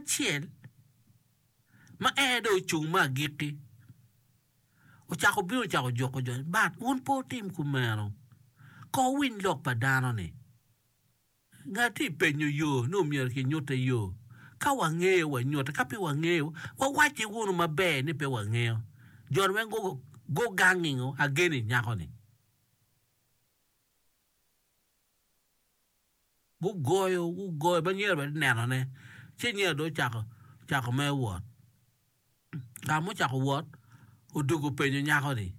acel ma en aye dong ocung me agikki ocako bino ocako juko jo ni, But wun pe wutim kumeno, kono wuwiny lok pa dano-ni. Ngat tye ka penyo yo, nongo myero kinyutte yo. Ka wangeyo, wanyutte, ka pe wangeyo, wawacci wunu maber ni pe wangeyo. Jo-ni weng gugangngo ageni nyako-ni. Gugoyo, gugoyo ma nyer bene nenone. Ci nyer dong ocako, ocako mere wot. Ka ma ocako wot, odwogo openyo nyako-ni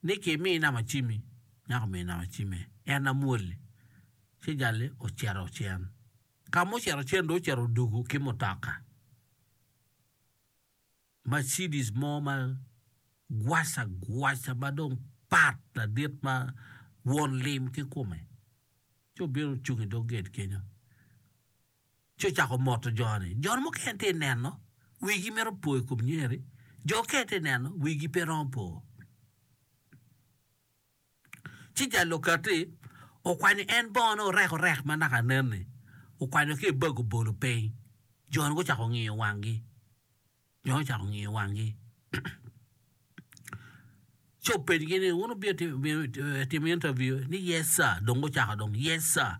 ni, Kimi nama acimmi? Nyako omiyo nama acimme. En amwol-li. Ci jal-li ocito ocen. Ka ma ocito ocen dong ocito odwogo ki mutoka. Mercedes mo ma gwaca gwaca ma dong pat ladit ma won lim ki kome ci obino ocung i dog gate kenyo ci ocako moto jo-ni. Jo mukene tye ka neno wigi mito po i kom nyer-ri, jo mukene tye ka neno wigi pe romo po. Ci jal okatti, okwanyo en bongone orek orek ma naka nen-ni, okwanyo ki i bag obolo piny. Jo-ni gucako ngiyo wanggi. Jo-ni ocako ngiyo wanggi. Ci openyogi ni, Wun wubino timo intaviu? Ni, Yes, sir. Dong gucako dong, Yes, sir.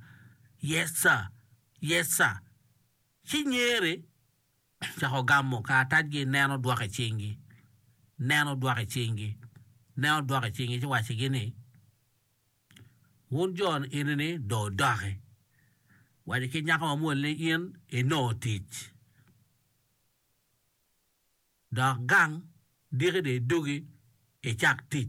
Yes, sir. Yes, sir. Ci nyere. Cako gamo karatacgi, nen odwoko i cingi, nen odwoko i cingi, nen odwoko i cingi ci waccigi ni, Wun jo eni-ni dong wudoki, wacci ki nyako mamwol ni in inongo tic, dok gang diki dong idugi icak tic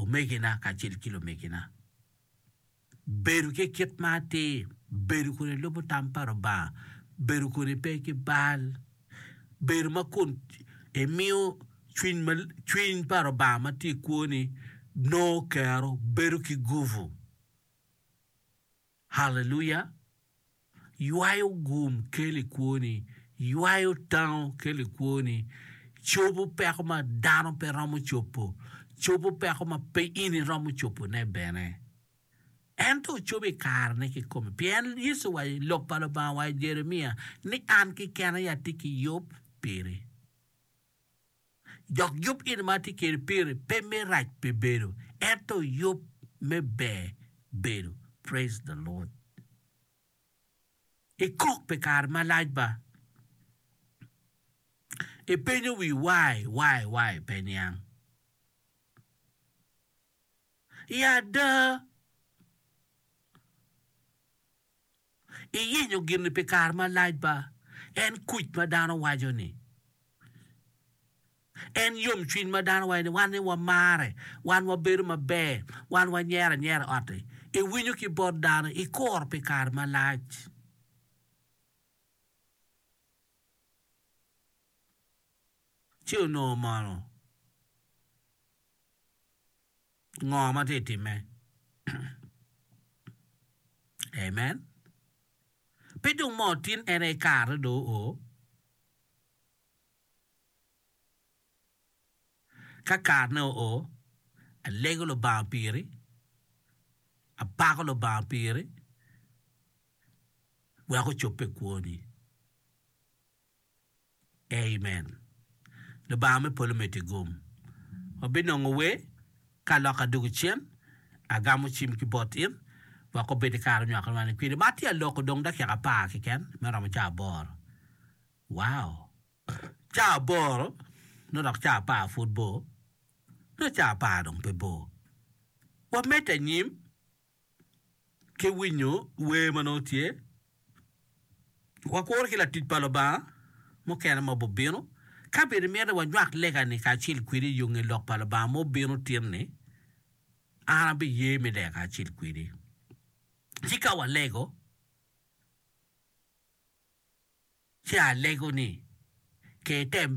Omegina kacel ki lumegina, bedo ki kit ma atir, bedo kun ilubo tam pa Lubanga, bedo kun ipe ki bal, bedo ma kun imiyo cwiny pa Lubanga ma tye i kwoni nongo kero, bedo ki gubu. Haleluya! Ywayo gum kelo i kwoni, ywayo tango kelo i kwoni, cobo peko ma dano pe romo cobo, cobo peko ma pe in iromo cobone bene. Ento ocobo i karene kikome, pien Yecu owaco i Lok pa Lubanga owaco i Jeremia ni, An kekena aye atye ki yub piri. Dok yub gin ma atye kede piri pe me rac pi bedo ento yub me ber bedo praise the Lord ikok pi kare malac ba ipenyo wi why why why pe niang I ada. iyenyo gin-ni pi kare malac ba, en kuc ma dano waco ni, en yomcwiny ma dano waco ni wan ni wamare, wan wabedo maber, wan wanyero anyera i ot-ti, iwinyo ki bot dano, ikuro pi kare malac. Ci onongo mono? ngo ma tye ka timme. Amen. Pe dong ma otin en aye kare do o. Ka karene o o, alego Lubanga piri, apako Lubanga piri wek ocobbe kwoni. Amen. Lubanga me polo omeddi gum. Wabinongo wer ka lok adwogo cen. Agamo cim ki bot in wek obed i kare onywako lwani kwiri. Ma tye aloko dong dakika apar keken me romo caa aboro. Wow! Caa aboro nongo dok caa apar pud bor. Nongo caa apar dong pe bor. Wamed anyim. ki winyo wer ma nongo tye, wakuru ki latic pa Lubanga mukene ma obibino. Ka bene imito wanywak lega-ni kacel kwedi i yo nge Lok pa Lubanga ma obino tin-ni, an abiye me lega kacel kwedi. Ci ka walego, ci alego ni, Ker tem bedo.